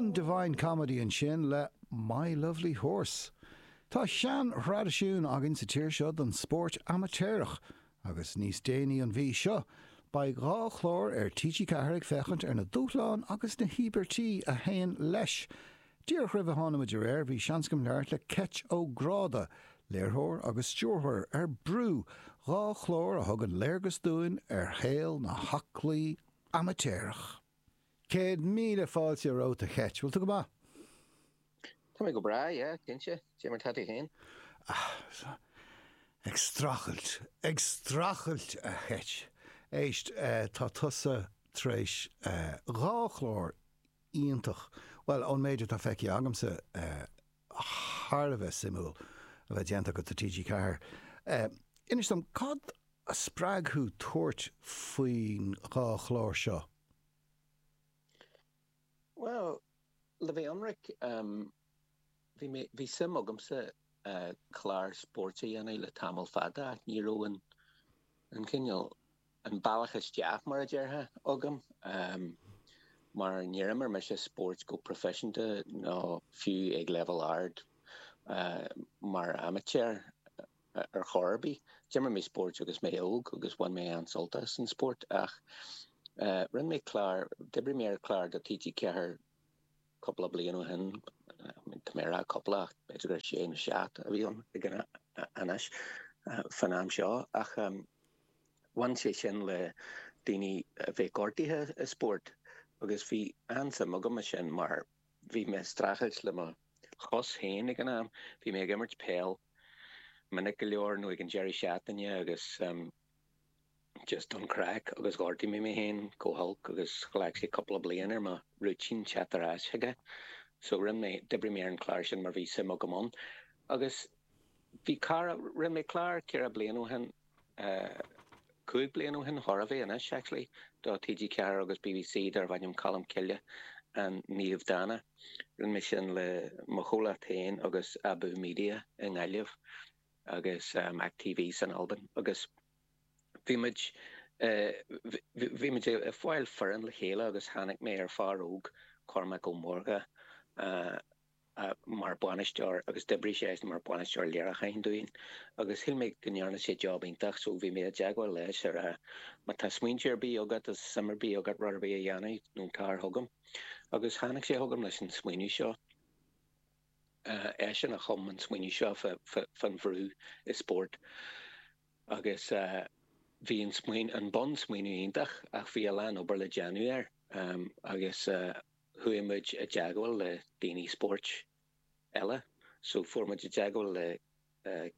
an Divine Comedy ansin le My Lovely Horse. Tá seanthraidisiún againn sa tír seo don spórt amaitéarach agus níos déanaí an mhí seo beidh dhá chlár ar TG4 ag féachaint ar na dúshláin agus na híobairtí a théann leis. Díreach roimh a tháinig muid ar aer bhí seans agam labhairt le Ceit Ó Gráda, léirtheoir agus stiúrthóir ar Brú, dhá chlár a thugann léargas dúinn ar shaol an aclaí amaitéaraigh. Céad míle fáilte romhat a Cheit. Bhfuil tú go maith? Tá mé go breá, yeah, cinnte. Cé mar tá tú féin? Ah, ag strachailt, ag strachailt a Cheit. Éist, tá tusa tar éis dhá chlár iontach, bhuel, ón méid atá feicthe agamsa, thar a bheith suimiúil a bheith déanta agat do TG4. Inis dom, cad a spreag thú tabhairt faoin dá chlár seo? Bhuel, le bheith ionraic, bhí mé, bhí suim agamsa clár spóirt a dhéanamh le tamall fada ach ní raibh an, an cineál, an bealach isteach, mar a déarfá, agam mar níor imir mise spóirt go proifisiúnta ná fiú ag leibhéal ard mar amaitéar. ar chor ar bith. D'imir mé spóirt agus mé óg agus bhain mé an-sult as an spórt ach rinne mé clár, d'oibrigh mé ar chlár do TG4 cúpla bliain ó shin, tá mé ag rá cúpla ach b'fhéidir gur sé nó seacht a bhí ann ag an, anois, fán am seo, ach bhain sé sin le daoine a bheith gortaithe i spóirt agus bhí an-suim agam ansin mar. Bhí mé ag strachailt le mo chos féin ag an am. Bhí mé ag imirt peil minic go leor nó ag an deireadh seachtaine agus just don chraic agus ghortaigh mé mé féin go holc agus ghlac sé cúpla bliain ar mo rúitín teacht ar ais chuige. So rinne mé, d'oibrigh mé ar an chlár sin mar bhí suim agam ann. Agus bhí cara, rinne mé clár ceithre bliana ó shin Cúig bliana ó shin, chóir a bheith anois, actually, do TG4 agus BBC darbh ainm Colm Cille An Naomh Dána. Rinne mé sin le mo chomhlacht féin agus Abú Media i nGaillimh agus Mac TV san Albain agus bhí muid bhí muid ag fáil foireann le chéile agus tháinig mé ar fhear óg, Cormac Ó Mórdha, mar bhainisteoir agus d'oibrigh sé mar bhainisteoir léiriúcháin dúinn agus shíl mé go ndearna sé job iontach so bhí mé i dteagmháil leis ag rá má tá smaointe ar bith agat is suim ar bith agat rud ar bith a dhéanamh nó gabh thart chugam agus tháinig sé chugam leis an smaoineamh seo eisean a chum an smaoineamh seo fán bhrú i spórt agus bhí an smaoineamh an bun smaoineamh iontach ach bhí a lán obair le déanamh air agus chuaigh muid i dteagmháil le daoine spóirt eile, so fuair muid i dteagmháil le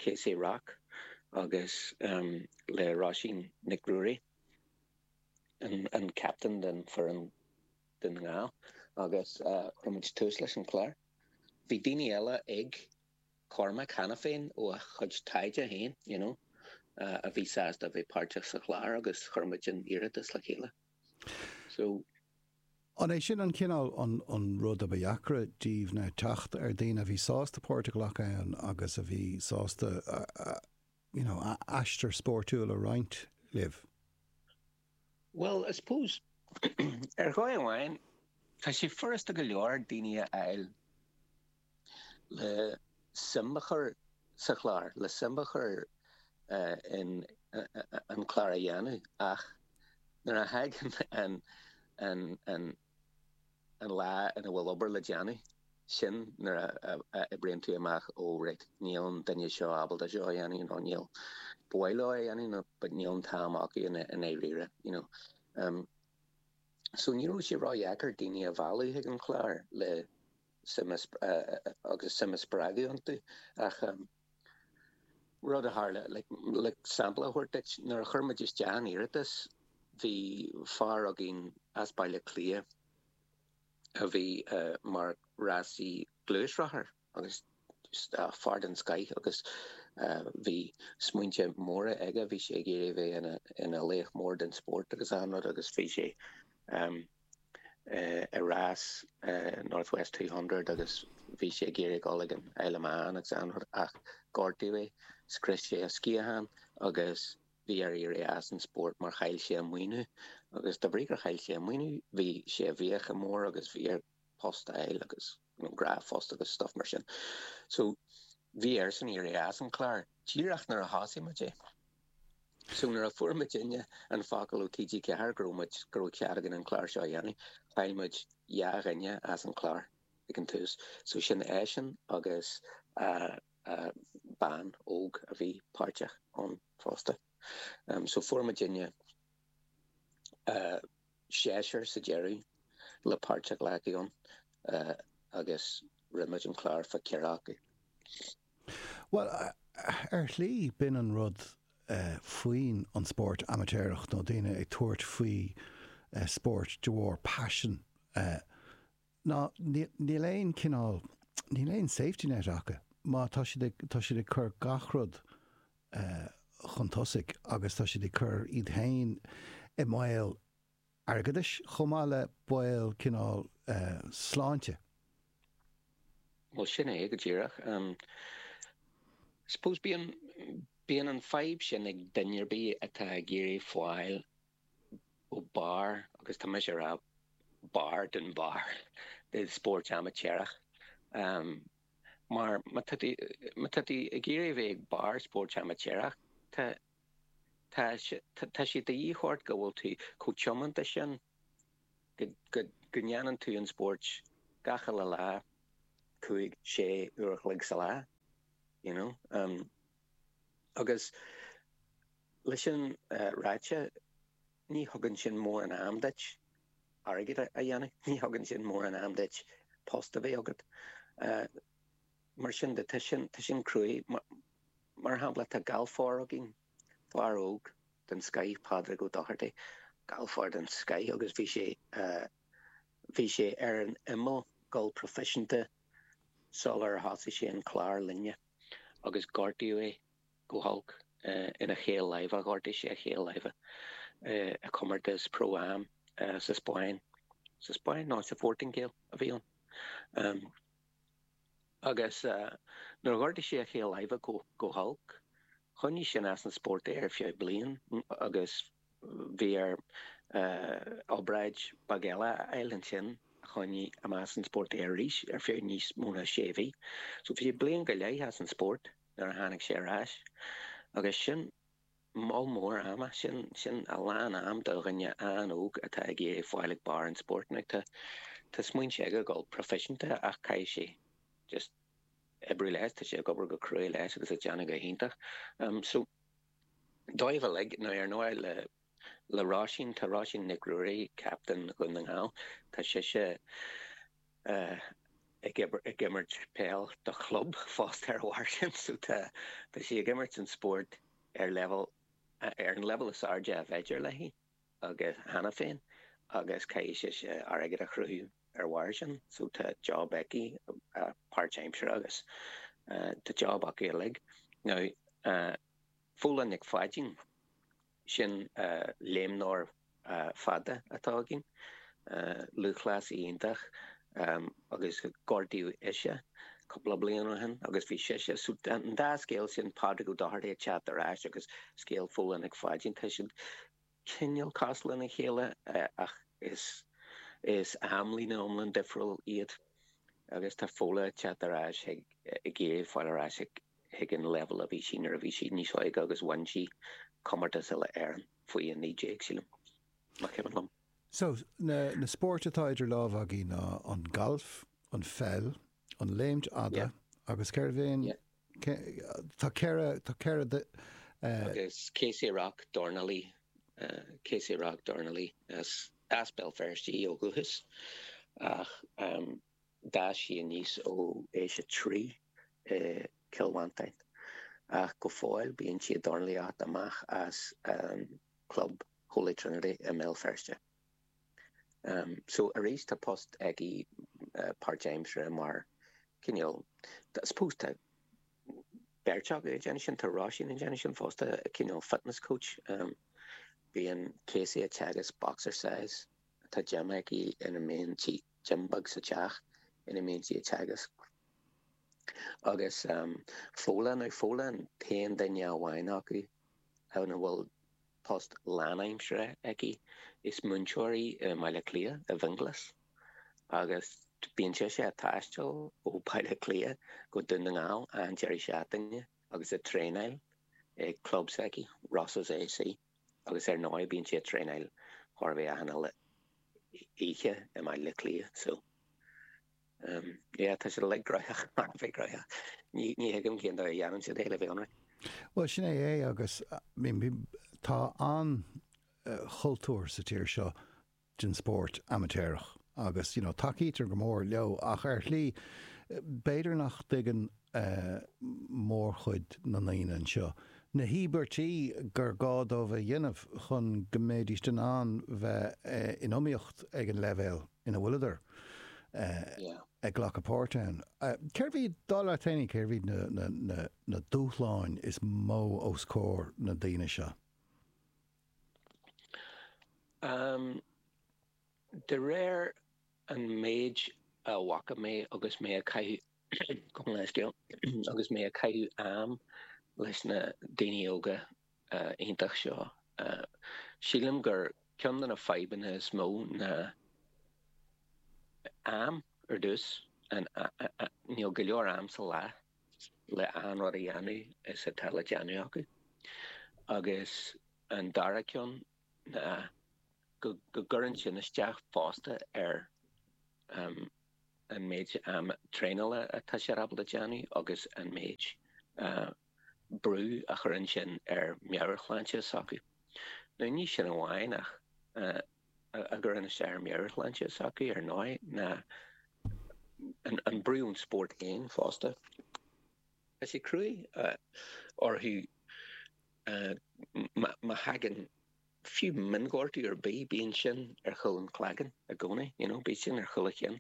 Katie Rock agus le Roisín Nic Ruairí, an captain den foireann Dún na nGall, agus chuir muid tús leis an chlár. Bhí daoine eile ag Cormac cheana féin ó a chuid taighde féin, you know, a bhí sásta a bheith páirteach sa chlár agus chuir muid an t-iarratas le chéile. So an é sin an cineál an rud a ba dheacra daoibh ná teacht ar daoine a bhí sásta páirt a ghlacadh ann agus a bhí sásta you know aistear spóirtiúil a roinnt libh? Bhuel, I suppose, ar dhóigh amháin, tá sé furasta go leor daoine a fháil. le suim a chur sa chlár, le suim a chur in an clár a dhéanamh ach nuair a thagann an lá ina bhfuil obair le déanamh, sin nuair a oibríonn tú amach, ó raight, níl an duine seo ábalta seo a dhéanamh nó níl, ba mhaith leo é a dhéanamh but níl an t-am acu i ndáiríre, you know. So ní raibh sé ró-dheacair daoine a mhealladh chuig an chlár le. agus suim a spreagadh iontu ach rud a tharla, like, sampla a thabhairt duit, nuair a chuir muid isteach an iarratas bhí fear againn as Baile Átha Cliath a bhí mar rásaí gluaisrothair agus fear den scoith agus bhí smaointe móra aige, bhí sé ag iarraidh a bheith ina laoch mór den spórt agus an-rud agus bhí sé i rás North West Two Hundred agus bhí sé ag iarraidh a dhul ag an Isle of Man agus anrud ach gortaíodh é, scrios sé a sciatháin agus bhí air éirí as an spórt mar chaill sé a maoiniú agus de bhrí gur chaill sé a maoiniú bhí sé i bhfiacha móra agus bhí air post a fháil agus you know droch phost agus stuff mar sin so bhí air san éirí as an clár díreach nuair a thosaigh muid é. So nuair a fuair muidinne an focal ó TG4 go raibh muid, go raibh cead againn an clár seo a dhéanamh, chaill muid dhá dhuine as an chlár ag an tús. So sin eisean agus bean óg a bhí páirteach ann fosta. So fuair muidinne seisear sa deireadh le páirt a ghlacadh ann agus rinne muid an clár fá cheathrar acu. Bhuel, ar shlí, b'in an rud faoin an spórt amaitéarach, nó daoine ag tabhairt faoi spórt de bharr paisin, ná níl aon cineál, níl aon safety net acu. Má tá siad, tá siad ag cur gach rud chun tosaigh agus tá siad ag cur iad féin i mbaol. airgeadais, chomh maith le baol cineál sláinte. Bhuel, sin é go díreach. I suppose, bíonn, bíonn an fhadhb sin ag duine ar bith atá ag iarraidh fáil go barr, agus tá mise a' rá barr den bharr, de spóirt amaitéarach. Mar má tá tú, má tá tú ag iarraidh a bheith ag barr spóirt amaitéarach, tá, Tá sé de dhíth ort go bhfuil tú chomh tiomanta sin go ndéanann tú an spóirt gach uile lá, cúig, sé uair an chloig sa lá, you know. Agus leis sin ráite, ní thugann sin mórán am duit airgead a dhéanamh, ní thugann sin mórán am duit post a bheith agat. mar sin de, tá sin, tá sin cruaidh. Mar shampla, tá galfár againn, fear óg den scoith, Pádraig Ó Dochartaigh, galfár den scoith agus bhí sé, bhí sé ar an imeall, gabháil proifisiúnta sular thosaigh sé an clár linne agus gortaíodh é go holc ina chaol láimhe, ghortaigh sé a chaol láimhe i comórtas Pro Am sa Spáinn, sa Spáinn? No, sa Phortaingéil a bhí ann. Agus nuair a ghortaigh sé a chaol láimhe go holc, choinnigh sin as an spórt é ar feadh bliain agus bhí air obráid bheag eile a fháil ansin a choinnigh amach as an spórt é arís ar feadh níos mó ná sé mhí. So bhí sé bliain go leith as an spórt nuair a tháinig sé ar ais agus sin Moll mór ama, sin a lán am do dhuine an-óg atá ag iarraidh fáil ag barr an spóirt. Now tá tá smaointe aige gabháil proifisiúnta ach caithfidh sé just oibriú leis, tá sé ag obair go cruaidh leis agus ag déanamh go hiontach. So dóibh uilig, now ar ndóigh le le Róisín, tá Róisín Nic Ruairí, captain Dhún na nGall, tá sise, ag imirt peil do chlub fosta ar a bharr sin so tá sí ag imirt an spóirt ar leibhéal, ar an leibhéal is airde a b'fhéidir léi agus, cheana féin agus caithfidh sise airgead a shaothrú ar bharr sin so tá job aici páirtaimseartha agus tá job acu uilig. Now, Fódhla Nic Pháidín. Sin léimneoir fada atá againn, lúthchleasaí iontach, agus gortaíodh ise cúpla bliain ó shin agus bhí sise, so an dá scéal sin, Pádraig Ó Dochartaigh ag teacht ar ais agus scéal Fódhla Nic Pháidín, tá siad cineál cosúil lena chéile ach is amlíne iomlán difriúil iad agus tá Fódhla ag teacht ar ais ag iarraidh fáil ar ais ag ag an leibhéal a bhí sí nuair a bhí sí níos óige agus bhain sí comórtas Uile-Éireann faoi 19, sílim. Má cheapann liom. So, na, na spóirt atá idir lámha againn, an galf, an pheil, an léim fhada yeah. agus céard bhéin yeah. ce, tá ceithre tá ceithre de uh, agus Casey Rock dornalaí uh, Casey Rock dornalaí as as Béal Feirste ó dhúchas ach um, D'fhás sí aníos ó aois a trí i gCill Mhantáin ach go fóill bíonn sí ag dornlaíocht amach as an gclub Holy Trinity i mBéal Feirste. So, arís, tá post aici páirtaimseartha mar cineál, I suppose tá beirt acu ag déanamh sin, tá Róisín ag déanamh sin fosta, cineál fitness coach. Bíonn Casey ag teagasc boxercise, tá gym aici ina mbíonn sí. Gym beag sa teach ina mbíonn sí ag teagasc agus Fódhla, nó Fódhla an t-aon duine amháin acu a bhfuil post lánaimseartha aici, is múinteoir í i mBaile Cliath, i bhFionghlas, agus bíonn sise ag taisteal ó Bhaile Cliath go Dún na nGall achan deireadh seachtaine agus ag traenáil i gclub s'aici, Rosses A.C. agus ar ndóigh bíonn sí ag traenáil thar a bheith achan uile oíche i mBaile Átha Cliath so em yeah tá siad like graitheach, thar a bheith graitheach ní ní thuigim cén dóigh a dhéanann siad é le bheith ionraic. Bhuel sin é é agus tá an-chultúr sa tír seo den spórt amaitéarach agus you know tacaítear go mór leo ach ar shlí b'fhéidir nach dtuigeann mórchuid na ndaoine anseo na híobairtí gur gá dóibh a dhéanamh chun go mbéidíst in ann bheith in iomaíocht ag an leibhéal ina bhfuil siad ag glacadh páirt ann. Cérbh iad, dar leat féin, cérbh iad na dúshláin is mó os comhair na ndaoine seo? Am, de réir an méid a bhfaca mé agus mé ag caint agus mé ag caitheamh am leis na daoine óga iontach seo, sílim gur ceann de na fadhbanna is mó ná am ar dtús, níl go leor am sa lá. le achan rud a dhéanamh is atá le déanamh acu. Agus an dara ceann ná go gcuireann sin isteach fosta ar an méid am traenála atá siad ábalta déanamh agus an méid brú a chuireann sin ar meabhairshláinte s'acu. Nó ní sin amháin ach a gcuireann isteach ar mheabhairshláinte s'acu, ar ndóigh, ná an brú ón spórt féin fosta. Tá sé cruaidh orthu má thagann fiú mionghortú ar bith, bíonn sin ar chúl an chloigeann i gcónaí, you know, bíonn sin ar chúl a gcinn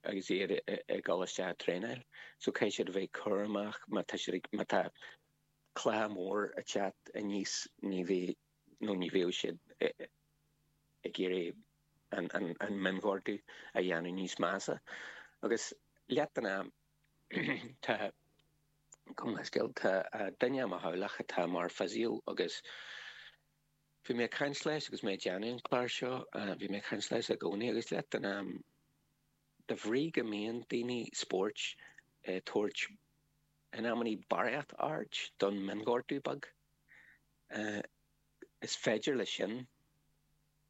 agus iad ag dul isteach ag traenáil. So caithfidh siad a bheith cúramach má tá siad ag, má tá cluiche mór ag teacht aníos, ní bheidh, nó ní bheadh siad ag iarraidh an mionghortú a dhéanamh níos measa. Agus leath den am tá, cosúil le, tá duine i mo theaghlach atá mar physio agus bhí mé ag caint leis agus mé ag déanamh an clár seo, bhí mé ag caint leis i gcónaí agus leath den am de bhrí go mbíonn daoine spóirt ag tabhairt in amannaí barraíocht aird don mionghortú beag, Is féidir leis sin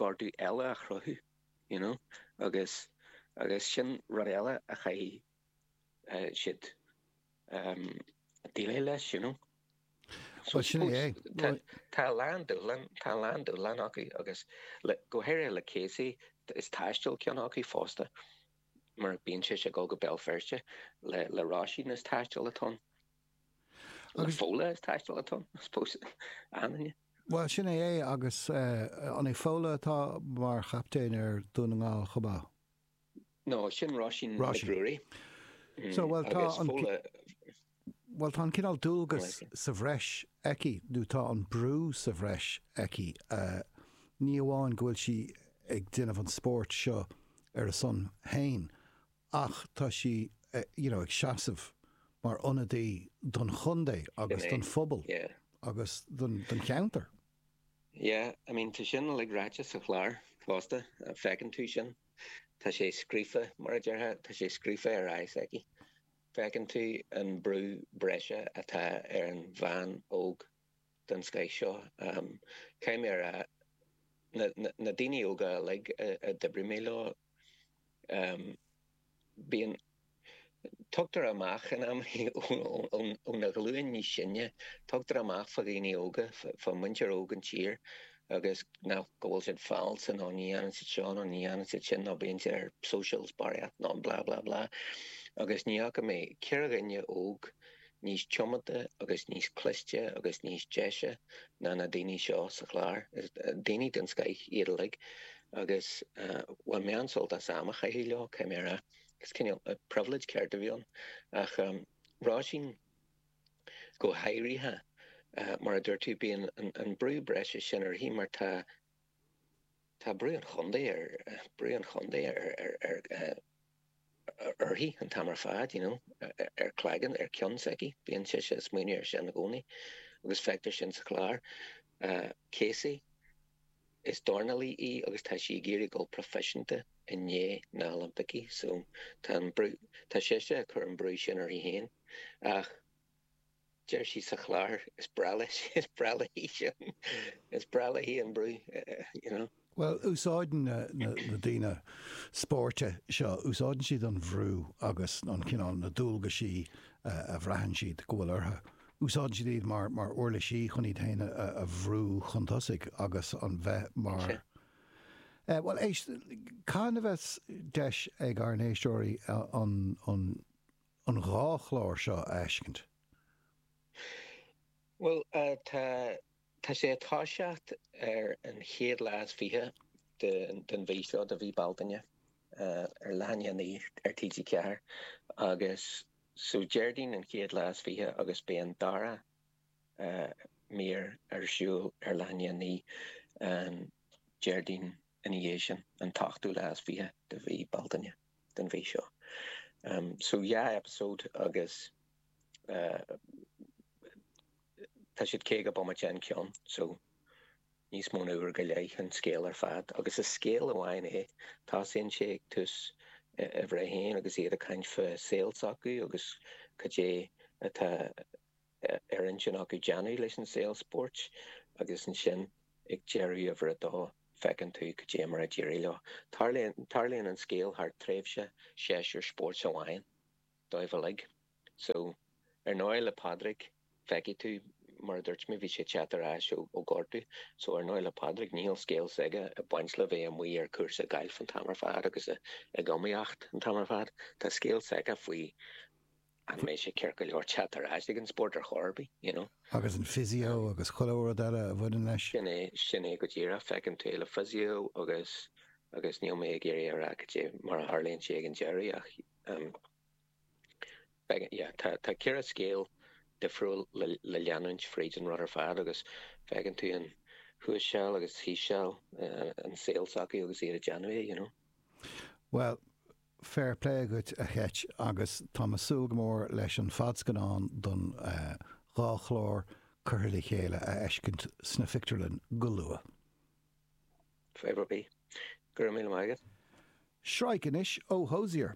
gortú eile a chruthú, you know, agus agus sin rud eile a chaithfidh siad deileáil leis, you know. Bhuel, sin é. Tá a lán dúshlán, tá a lán dúshlán acu agus go háirithe le Casey is taisteal ceann acu fosta mar bíonn sé ag dul go Béal Feirste le le Róisín is taisteal atá ann. Agus Fódhla is taisteal atá ann, I suppose, Annaine. Bhuel, sin é é agus an é Fódhla atá mar chaiptín ar Dún na nGall chomh maith? No, sin Róisín Nic Ruairí. So, bhuel, tá an, bhuel, tá an cineál dualgas sa bhreis aici, nó tá an brú sa bhreis aici, ní amháin go bhfuil sí ag déanamh an spóirt seo ar a son féin ach tá sí ag seasamh mar ionadaí don chontae agus don phobal agus don cheantar. Yeah, I mean, tá sin uilig ráite sa chlár fosta, feiceann tú sin. Tá sé scríofa, mar a déarfá, tá sé scríofa ar aghaidh s'aici. Feiceann tú an brú breise atá ar an bhean óg. den scoith seo. Caithfidh mé a rá, na daoine óga uilig a d'oibrigh mé leo, bíonn, tugtar amach in amannaí ó na ghlúin níos sine, tugtar amach fá dhaoine óga, fá mhuintir óg an tír agus nach, go bhfuil siad false nó ní dhéanann siad seo nó ní dhéanann siad sin nó bíonn siad ar socials barraíocht nó blah blah blah agus ní fhaca mé, ceithre dhuine óg, níos tiomanta agus níos cliste agus níos deise ná na daoine seo sa chlár. Daoine den scoith iad uilig agus bhain mé an-sult as am a chaitheamh leo, caithfidh mé a rá. Cineál privilege ceart a bhí ann. Ach Róisín go háirithe, mar a dúirt tú, bíonn an brú breise sin uirthi mar tá, tá brú an chontae ar uirthi an t-am ar fad, you know, ar chloigeann, ar ceann s'aici, bíonn sise ag smaoineamh air sin i gcónaí agus feictear sin sa chlár. Casey, is dornálaí í agus tá sí ag iarraidh dul proifisiúnta i ndiaidh na nOilimpicí so tá an brú, tá sise ag cur an brú sin uirthi féin ach, Deir sí sa chlár, Is breá leis, is breá léi sin, is breá léi an brú, you know. Bhuel, úsáideann na daoine spóirt seo, úsáideann siad an brú agus an cineál, na dualgaisí a bhraitheann siad go bhfuil orthu, úsáideann siad iad mar uirlisí chun iad féin a bhrú chun tosaigh agus an bheith mar, eh, bhuel, éist, cathain a bheidh deis ag ár n-éisteoirí an, an, an dhá chlár seo a fheiscint? Bhuel, tá, tá sé ag toiseacht ar an chéad lá is fiche de, den mhí seo, de mhí Bealtaine, ar leath i ndiaidh a naoi ar TG4 agus so Déardaoin an chéad lá is fiche agus beidh an dara mír ar siúl ar leath i ndiaidh a naoi an Déardaoin ina dhiaidh sin, an t-ochtú lá is fiche de mhí Bealtaine. den mhí seo. So dhá eipeasóid agus tá siad caoga bomaite an ceann, so níos mó ná uair go leith an scéal ar fad. Agus is scéal amháin é, tosaíonn sé ag tús uimhir a haon agus iad ag caint fá saol s'acu agus cad é atá ar intinn acu déanamh leis an saol spóirt agus ansin ag deireadh uimhir a dó feiceann tú cad é mar a d'éirigh leo. Tarlaíonn an scéal thar tréimhse séasúr spóirt amháin dóibh uilig. So, ar ndóigh le Pádraig feicfidh tú mar a dúirt mé bhí sé ag teacht ar ais ó gortú so ar ndóigh le Pádraig níl scéal s'aige ag baint le bheith amuigh ar cúrsa gailf an t-am ar fad agus ag iomaíocht an t-am ar fad. Tá scéal s'aige faoi An mbeidh sé ceart go leor teacht ar ais ag an spórt ar chor ar bith, you know? Agus an physio agus chuile rud eile a bhaineann leis? Sin é, sin é go díreach. Feiceann tú le physio agus, agus níl mé ag iarraidh a rá caidé mar a tharlaíonn sé ag an deireadh ach, feicim, yeah, tá, tá ceithre scéal difriúil le, le leanúint fríd an rud ar fad agus feiceann tú an thuas seal agus thíos seal, an saol s'acu agus iad ag déanamh é, you know? Bhuel, Fair play dhuit a Cheit agus táim ag súil go mór leis an fadscannán don dhá chlár curtha le chéile a fheiscint sna pictiúrlanna go luath. Fair play. Go raibh míle maith agat. Traic anois ó Hozier.